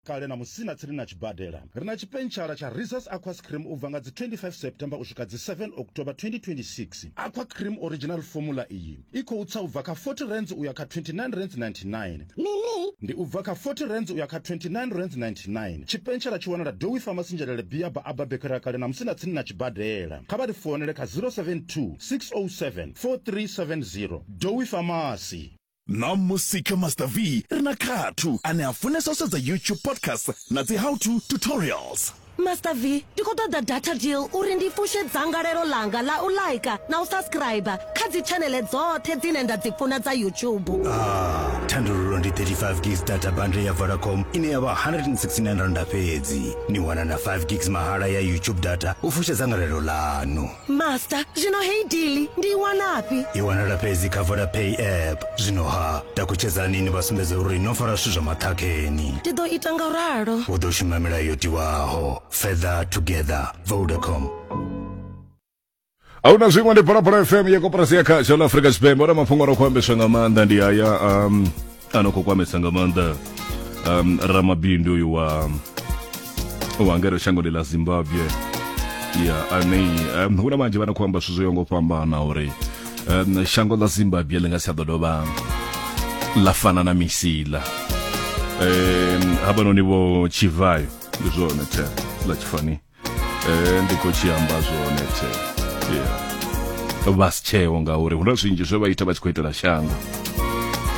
Kale na musina tsini na tshibadela, ri na tshipentshela tsha Risa's Aqua Scream u bva nga dzi 25 September u swika dzi 7 October 2026. Aqua Cream Original Formula iyi i khou tsa u bva kha R40 u ya kha R29.99. Ndi u bva kha R40 u ya kha R29.99. Tshipentshela tshi wanala Dowie Pharmacy Njelele Bia ba Abba Bakery ya Kale na musina tsini na tshibadela. Kha vha ri founele kha 072 607 4370. Dowie Pharmacy. Ṋamusi kha Master V ri na Khathu ane a funesa u sedza YouTube podcast na dzi how to tutorials. Master V, ndi khou ṱoḓa data deal uri ndi fushe dzangalelo ḽanga ḽa u like na u subscriber kha dzi tshaneḽe dzoṱhe dzine nda dzi funa dza YouTube. Ah, thandululo ndi 35 gigs data bundle ya Vodacom ine ya vha 169 randa fhedzi. Ni wana na 5 gigs mahala ya YouTube data u fusha dzangalelo ḽanu. master zwino heyi dili ndi i wanafhi i wanala fhedzi kha vodapay app zwino ha takutshedzani ni vha sumbedza uri no fara zwithu zwa maṱhakheni ndi ḓo ita nga ralo hu ḓo shuma milayo yo tiwaho further together vodacom ahuna zwiṅwe ndi phalaphala fm ya koporasi ya khasho ḽa afrika tshipembe ona mafhungo ro khou ambeswa nga maanḓa ndi haya um, ano khou kwamesa nga maanḓa um, ramabindu uyu wa wa ngeno shangoni ḽa zimbabwe ya ane um, hu na vhanzhi vha na khou amba zwithu zwo yo ngo fhambana uri um, shango ḽa zimbabwe ḽi nga si a ḓo dovha ḽa fana na misila um, havhanoni vho tshivayo ndi zwone the ḽa tshifani eh, ndi khou tshi amba zwone the yeah. vha si tsheo ngauri hu na zwinzhi zwe vha ita vha tshi khou itela shango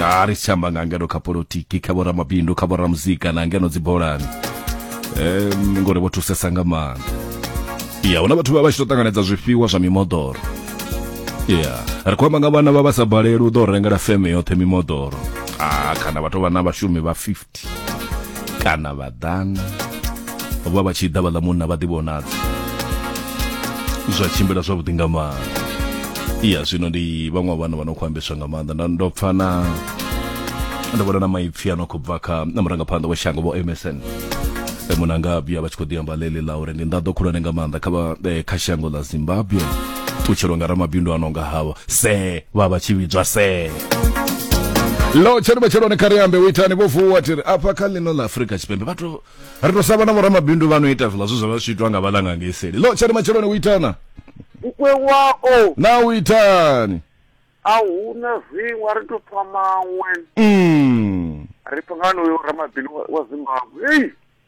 a ri si tsha amba nga ngeno kha politiki kha vhoramabindu kha vhoramuzika na ngeno dzibolani um, ngori vho thusesa nga maanḓa ya huna vhathu vha vha tshi to ṱanganedza zwifhiwa zwa mimoḓoro ya ri khou amba nga vhana vha vha sa baleli u ḓo rengela feme yoṱhe mimoḓoro a kana vha tou vha na vhashumi vha 50 kana vhaḓana vha vha tshi ḓa vhaḽa munna vha ḓivhonadza zwa tshimbila zwavhuḓi nga maanḓa iya zwino ndi vhaṅwe vhana vha no khou ambeswa nga maanḓa nda ndo pfa na ndo vhona na maipfi a no khou bva kha na murangaphanḓa wa shango vho msn munanga vhuya vha tshi khou ḓi amba ḽeḽi ḽa uri ndi nḓaḓo khulwane nga maanḓa kha eh, kha shango ḽa zimbabwe ṱutshelwa nga ramabindu a no nga havho se vha vha tshi vhidzwa se lo tsheni matsheloni kha ri ambe u itani vho vuwa tiri afha kha ḽino ḽa afurika tshipembe vhathu ri to sava na vhoramabindu vha no ita zwiḽa zwi zwa vha zwi itwa nga vhalanga ngei seli lo tsheni matsheloni u itana ukwe wao na u itani a hu na zwiṅwe a ri to pfa maṅwe mm. ri pfa nga noyo ramabindu wa- wa zimbabwe ei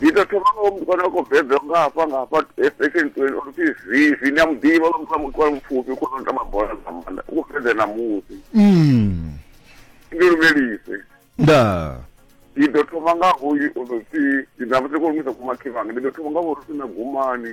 ndi ḓo thoma nga mukwana wa khou bebelwa nga hafha nga hafha section twenty uri pfi zivi ndi a mu ḓivha lwa muthu a muthu wa mupfufhi u khona u tamba bola dza maanḓa u khou bebela na musi Mm. ndi lumelise nda ndi ḓo thoma nga hoyu uri pfi ndi na vhuseko lu misa kumakhivhanga ndi ḓo thoma nga vhori pfi na gumani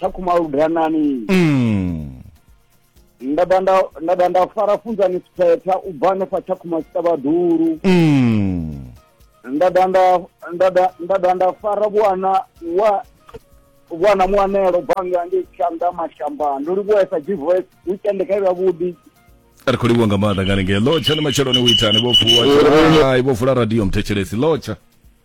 kha khumaludanani mm. nda dovha nda nda dovha nda fara funzani siphetha u bva hanefha tsha khuma tshiṱavhaḓulu mm. nda dovha nda nda dovha- nda dovha nda fara vhuana wa vhuana muanelo banga ngei tshanḓa mashamba ndo livhuesa gvoice weekend kha ivha vhuḓi ri khou livhuwa nga maanḓa nga hanengei lotsha ni matsheloni u itani vho vuwa hai vho vula radio mthetshelesi lotsha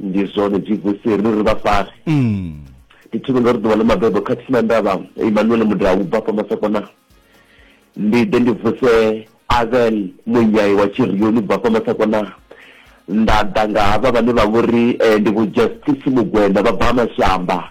ndi zwone jesus ri ri vha fare mm. ndi thome nga ri ḓuvha ḽa mabebo kha tsina ndavha emmanuel mudau u bva famasakona ndi ḓe ndi vuse avel munyai wa tshirioni u bva famasakona nda ḓa nga havha vhane vha vhori eh, ndi vho justice mugwenda vha bva mashamba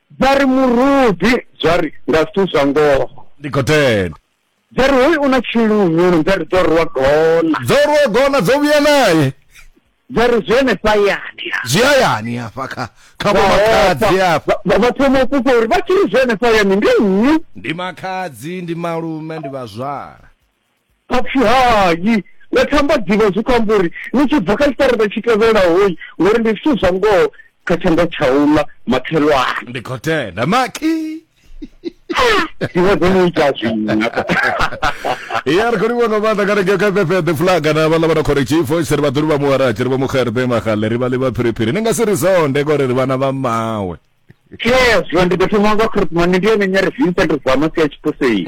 dza ri murudi dza ri nga zwithu zwa ngoho ndi khou tenda dza ri hoyu u na tshilungulu dza ri dzo rwa gona dzo rwa gona dzo vhuya naye dza ri zwi henefha yani zwi hayani hafha kha kha vho makhadzi hafha vha thoma u fhufha uri vha tshi ri zwi henefha yani ndi nnyi ndi makhadzi ndi malume ndi vhazwala A pfi, Hai, na thambadzivha zwi khou amba uri ni tshi bva kha tshiṱaraṱa tshi tevhelahoi, ngori ndi zwithu zwa ngoho kha tshanḓa tsha u ḽa makhelwane. Ndi khou tenda makhi. Dziṅwe dzo mu ita zwina. Ya ri khou livhuwa nga maanḓa kana ngeo kha FFF the flag na vhaḽa vha na khori tshifo tshi ri vhaḓulu vha muharatshe ri vha muxerbe magale ri vha ḽi vha phiriphiri ni nga si ri zonde ngori ri vhana vha mawe. Yes, ndi ḓo thoma nga Christmas ndi yone nyari Vincent Zama sia tshiposei.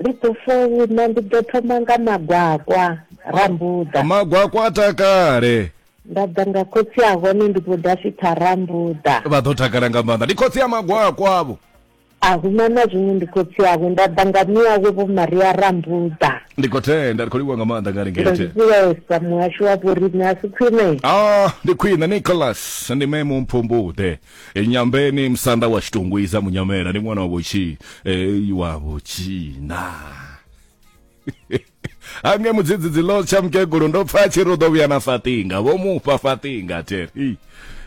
Ndi ḓo founa ndi ḓo thoma nga magwakwa rambuḓa. Magwakwa a takale. Nda ḓa nga khotsi a hone ndi vho dafitha rambuḓa. Vha ḓo takala nga maanḓa ndi khotsi ya magwakwa avho. A huna na zwiṅwe ndi khotsi awe nda ḓa nga miawe vho Maria rambuḓa. Ndi khou tenda ndi khou livhuwa nga maanḓa nga ringete. Ndi vhulesa muhasho wa vhoriṋe a si khwine. Ah ndi khwine Nicholas ndi memu mphumbuḓe. e nyambeni musanda wa xitungwiza munyamela ni n'wana wa voxi e wa voxina ange mudzidzidzi lo tsha mukegulu ndo pfa tshi ri u ḓo vhuya na fatinga vho mufha fatinga teri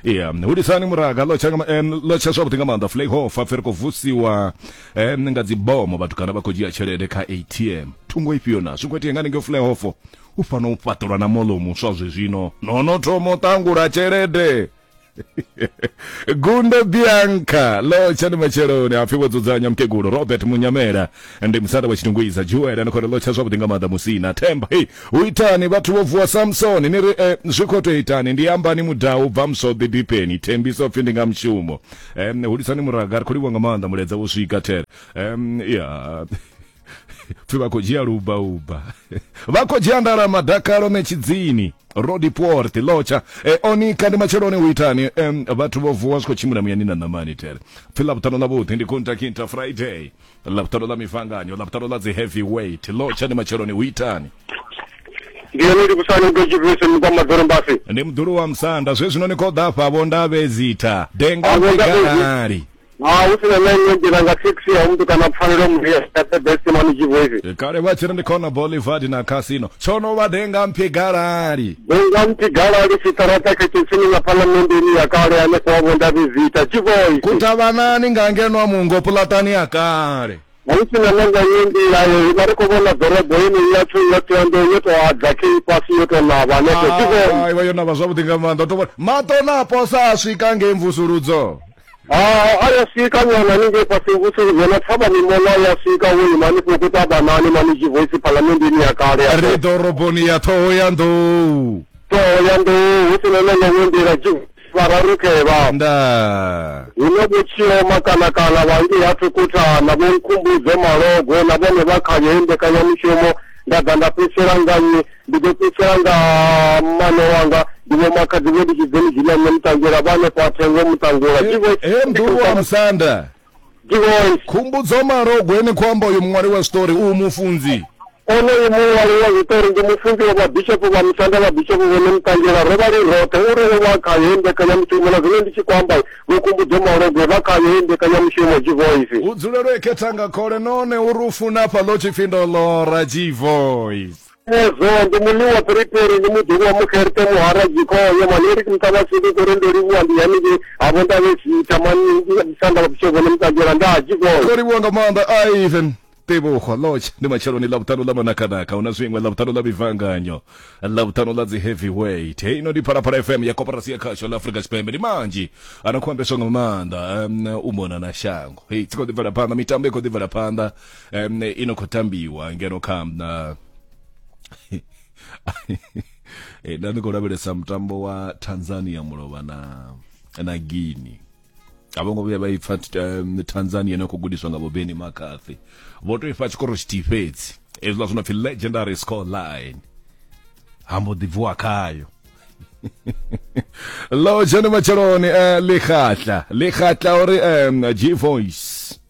iya hudisani muraga lo tsha nga ma- eh, lo tsha zwavhuḓi nga maanḓa flayhofa pfe ri khou vusiwa eh, nga dzibomo vhatukana vha khou dzhia tshelede kha atm thungo ifhio na zwi khou itea nga ninge flayhofo u fanela u fhaṱelwa na molo muswa zwezwino no no thoma u ṱangula tshelede gundo bianca lo tshani matsheloni hapfi vho dzudzanya mukegulu robert munyamela ndi musanda wa tshitungwiza juel ani khori lo tsha zwavhuḓi nga maanḓa musina themba hei hu itani vhathu vho vuwa samsoni ni ri eh, zwi khou tou itani ndi ambani mudau bva musode dipeni thembiso pfi ndi nga mushumo um, hulisani muraga ri khou livhuwa nga maanḓa muledza wo swika there um, yeah. pfi vha khou dzhia lubauba vha khou dzhia ndala madakalo metshidzini rodiport lotsha e, onika ndi matsheloni u itani um, vhathu vho vuwa zwi khou tshimbila muyani na ṋamani tere pfi ḽavhuṱanu ḽavhuḓi ndi kuntakinta friday ḽavhuṱanu ḽa mifanganyo ḽavhuṱanu ḽa dzi heavy weight lotsha ndi matsheloni u itani ndi yone ndi kusani ndo tshifhisi mukwa madzoro mbasi ndi mdulu wa musanda zwe zwino ni khou ḓa fhavho ndavhezitha denga Avo ndavhezi- mbekanali ha hu si na na iṅwe nḓila nga thekhisi ya muthu kana pfanelo muthu ya ṱebesimani tshivoivi E, kale vha tshi ri ndi khona bolivard na casino tsho no vha denga mphi galali denga muthu galali tshiṱaraṱa khethesini nga phalamendeni ya kale hanefho wa vhonda vizita tshivoivi kutavhanani nga ngenwa mungo pulatani ya kale ha hu si na na nga iṅwe nḓila yo ivha ri khou vhona ḓorobo yeneyi yathu ya thoyando yo tou adza kei fhasi yo tou navha hanefho tshivoivi Ah, iwe yo navha zwavhuḓi nga maanḓa u to vhona mato na posa a swika ngei mvusuludzo Ah, a ya swika nyana ni nge fhasi vhusiku dzona thavha mimola ya swika wo ima ni fhoko tabanani mani tshi voice phalamenndini ya kale ya ri ḓoroboni ya ṱhoho ya nḓou ṱhoho ya nḓou hu si na na ḽoṅwe nḓila tshi vhararukevha nda hu na vhotshio makanakana vhangi ha thukhutha na vho nkhumbudzo malogo na vhone vha khayo he mbekanyamushumo nda ḓa nda fhedzisela nganyi Ndi ḓo fhedzisela nga mmane wanga, ndi vho makhadzi vho litshidzeni dzina nṋe muṱangula vha hanefho ha thengo muṱangula. He, he Mdudu wa Musanda. Divoice. Khumbudzo Malogwe ni khou amba uyo muṅwali wa zwiṱori u mufunzi. Onoyu muṅwali wa zwiṱori ndi mufunzi wa vhabishopo vha Musanda vhabishopo vho no muṱangula ro vha ri roṱhe uri o vha khayo he mbekanyamushumo na zwino ndi tshi khou amba vho Khumbudzo Malogwe vha khayo he mbekanyamushumo Divoice. U dzulelwe khethanga khole none uri u funa hafha ḽo tshipfi ndo ḽora Divoice. ezwo ndi muliwa phiriphiri ndi muḓulu wa mukherte muhara jikhoyo maneri ke mutaba sidi kore ndo livhuwa ndi haniki havo ndave zita manisanda vapushovo ni mutajela nda jikhoyo ndo livhuwa nga maanḓa ivan tebogo lodge ndi matsheloni ḽa vhuṱanu ḽa manakanaka hu na zwiṅwe ḽa vhuṱanu ḽa mivanganyo ḽa vhuṱanu ḽa dzi heavyweight hei ino ndi phalaphala fm ya koporasi ya khasho ḽa afurika tshipembe ndi manzhi a no khou ambeswa nga maanḓa um, u mona na shango hei tsi khou ḓi bvela phanḓa mitambo i khou ḓi bvela phanḓa um i no khou tambiwa ngeno kha na eh, nda ndi khou lavhelesa mutambo wa tanzania mulovha na na guini a vho ngo vhuya vha ipfa um, tanzania ine khou gudiswa nga bobeni makathi vho tou ifha tshikoro tshithihi fhedzi ezwiḽa zwi no pfi legendary score line hambo ḓi bvuwa khayo lo dzhene matsheloni um eh, likhatla likhatla uri um eh, g voice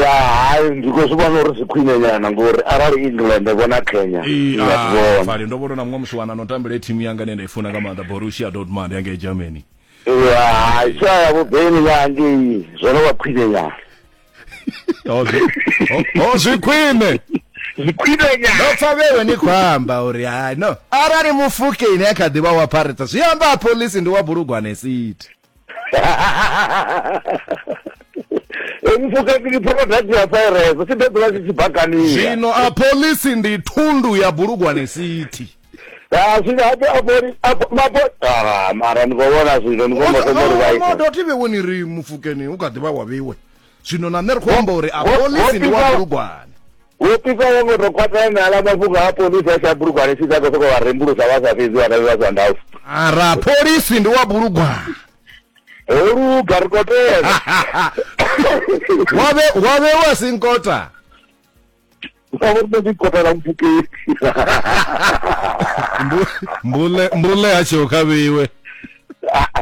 ya hai ndi khou zwi vhona uri zwi khwine nyana ngori arali england vho na kenya fali ah, ndo vhona na muṅwe musi wana no tambele thimu yanga ine nda i funa nga maanḓa borussia dortmund yanga i germany hai sa ya vhubeni yangei zwo no vha khwine nyana oh, oh, zwi khwine zwikhwinenya ndo pfa vhewe ni khou amba uri hai no arali mufukeni a kha ḓivha wa phareta zwi amba a polisi ndi wa bulugwane city zwino a polisi ndi thundu ya bulugwane city ah, mara ni khou vhona zwino ni khou vhona uri vha ita ndo tivhe woni ri mufukeni u kha ḓivha wa vhiwe zwino na nṋe ri khou amba uri a polisi ndi wa bulugwane wo pisa wo ngo tou khwathela na ala mafhungo a polisi a tsha bulugwane tshi sa khou sokou vha rembulusa vha sa fhedzi vhana vha sa ndausa ara polisi ndi wa bulugwane holuga ri khou tela wave wave wa sinkota Por favor, nos encontrará un buque. mbule mbule yacho kabiwe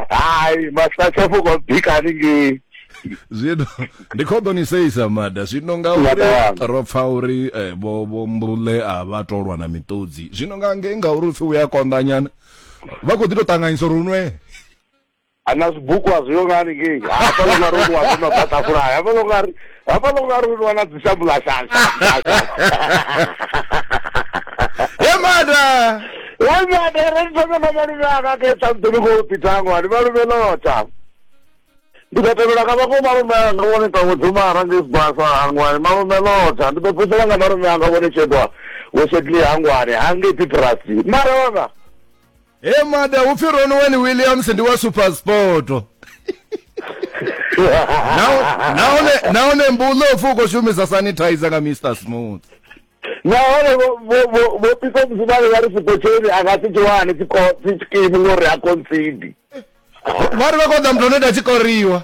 Ai, mas tá só vou complicar ninguém. zwino ndi khou ḓo ni seisa mada zwino nga Mada uri wanga. ro pfa uri eh, vho vho mbule a vha tolwa na miṱodzi zwino nga ngei ngauri upfi u ya konḓanyana vha khou ḓi tou ṱanganyisa uri unwe ana zwibuku a zwiyo nga haningei hafha lo nga ri u waso na ḓatafula hafha lo nga ri hafha lo nga ri u wana dzishambula shasha yemada yemada re ndi thome na malume anga ke tsa mdumi ko pitango ani malume lota ndi ḓo tevhela nga vhako malume anga vhone ṱawo dzuma arangei sibasa hangwani malume lota ndi ḓo phusela nga malume anga vhone tshedwa wo shedli hangwani hangei pitrasi mara vhanga he mada upfi ronwen williams ndi wa supersport Naho- nahone nahone mbuno upfi u khou shumisa sanitizer nga mr smooth nahone vho- vho- vho- vho pisa muzimane vha ri sipotsheni a nga si tshi wane tshikimu ngori a concidi vha ri vha khou ḓa muthu ane ta tshi koriwa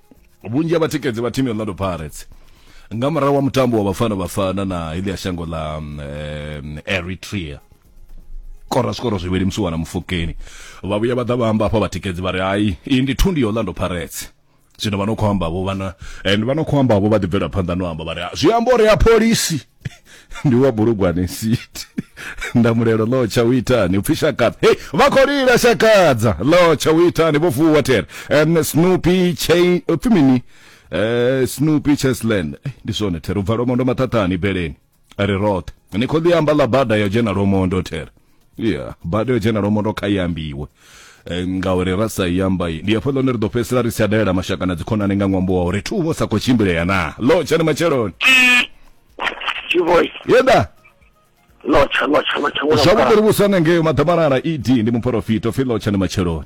vhunzhi ha vhatikedzi vha thimu ya Orlando Pirates nga murahu wa mutambo wa Bafana Bafana na iḽi ya shango ḽa um, eh, Eritrea kora zwikoro zwivhili musi wana mufukeni vha vhuya vha ḓa vha amba hafha vhatikedzi vha ri hai iyi ndi thundi ya Orlando Pirates zwino vha no khou amba vho vhana and vha no khou amba vho vha ḓi bvela phanḓa no amba vha ri zwi amba uri ya pholisi ndi wa bulugwane city ndamulelo lo tsha u itani upfi shakadza hei vha khou lila shakadza lo tsha u itani vho vuwa tere um, snoopy chain upfi mini uh, snoopy chesland Eh, ndi zwone tere u bva lomondo maṱhaṱhani beleni a ri roṱhe ni khou ḽi amba ḽa bada yo dzhena lomondo tere ya bada yo dzhena lomondo kha i ambiwe Eh, ngauri ra sa i amba i- ndi hafho ḽone ri ḓo fhedzisela ri si tsha dalela mashaka na dzikhonani nga ṅwambo wa uri thuvho sa khou tshimbilea na lo tshani matsheloni Chivoy, yeda lotsha, lotsha, lotsha. zwavhuḓi ri vhuswa nga ngeyo maḓamalala ed ndi muporofita upfi lo tshani matsheloni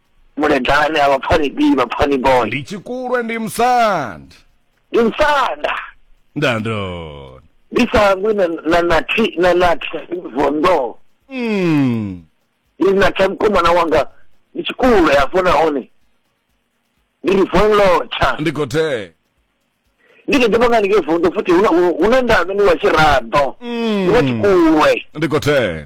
muledane a vhapfani b vhapfani boy ndi tshikulwe ndi musanda ndi musanda ndandona ndi sangwi na na na thi na na thi vondo mm. ndi na thi mkomana wanga ndi tshikulwe afho na hone ndi ri von locha ndi khothe ndi ke dipanga ndi ke vondo futhi huna huna ndavhe ni wa tshirado mm. ndi wa tshikulwe ndi khothe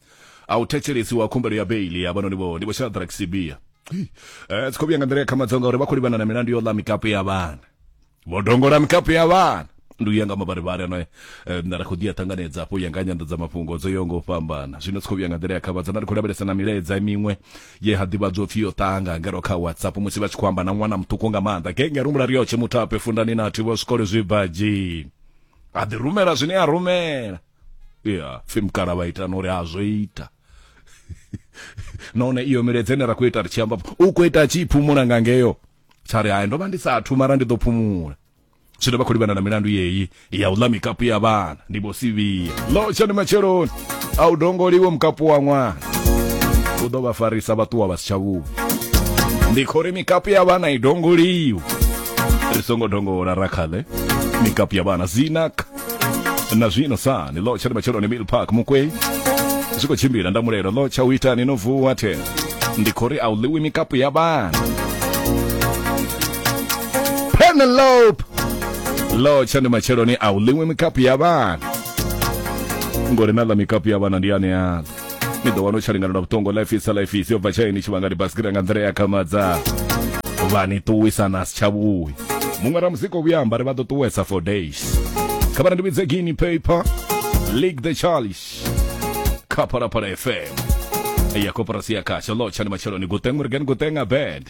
a u thetshelesi wa khumbelo ya beili ya vhanoni vho ndi vho shadrack sibia eh tsikho vhuya nga nḓila ya khamadzo ngauri vha khou livhana na milandu yo ḽa mikapu ya vhana vho dongola mikapu ya vhana ndi u ya nga mavharivhari ano na ri khou ḓi a ṱanganedza afho u ya nga nyanḓadza mafhungo dzo yaho nga u fhambana zwino tsikho vhuya nga nḓila ya khavhadzo na ri khou lavhelesa na milaedza miṅwe ye ha ḓivhadzwa upfi yo ṱanga ngero kha whatsapp musi vha tshi khou amba na ṅwana muṱuku nga maanḓa genge a rumbula riyotshe muthu ape fundani na thi vho zwikolo zwibadzhi a ḓi rumela zwine a rumela ya pfhi mukala vha ita na uri a zwo ita nahone iyo miledze ine ra khou ita ri tshi amba u khou ita tshi phumula nga ngeyo tsha ri hayi ndo vha ndi sa athu mara ndi ḓo phumula zwino vha khou livhana na milandu yeyi ya u ḽa mikapu ya vhana ndi vho sivhiya lo tshani matsheloni a u dongoliwe mukapu wa ṅwana u ḓo vha farisa vha ṱuwa vha si tsha vhuya ndi khou ri mikapu ya vhana i dongoliwe ri songo dongola ra khaḽe mikapu ya vhana zinaka na zwino sa ni lotsha ndi matsheloni mill park mukwe zwi khou tshimbila nda mulelo lotsha u ita ni no vuwa the ndi khou ri a u ḽiwi mikapu ya vhana penelope lotsha ndi matsheloni a u ḽiwi mikapu ya vhana ngori na ḽa mikapu ya vhana ndi aneaḽa ni ḓo wana u tsha lingana na vhuṱongo life isa life isi yo bva tshaini tshi vhangani basikira nga nḓila ya khamadza vha ni ṱuwisa na si tshavhuyi muṅwe ra muzika o vhuya amba ri vha ḓo ṱuwesa for days kha vhana ndi vhidze guinea paper league the charles kha phalaphala fm ya koporasi ya khasha lotsha ndi matsheloni gutengu rigani gutenga bed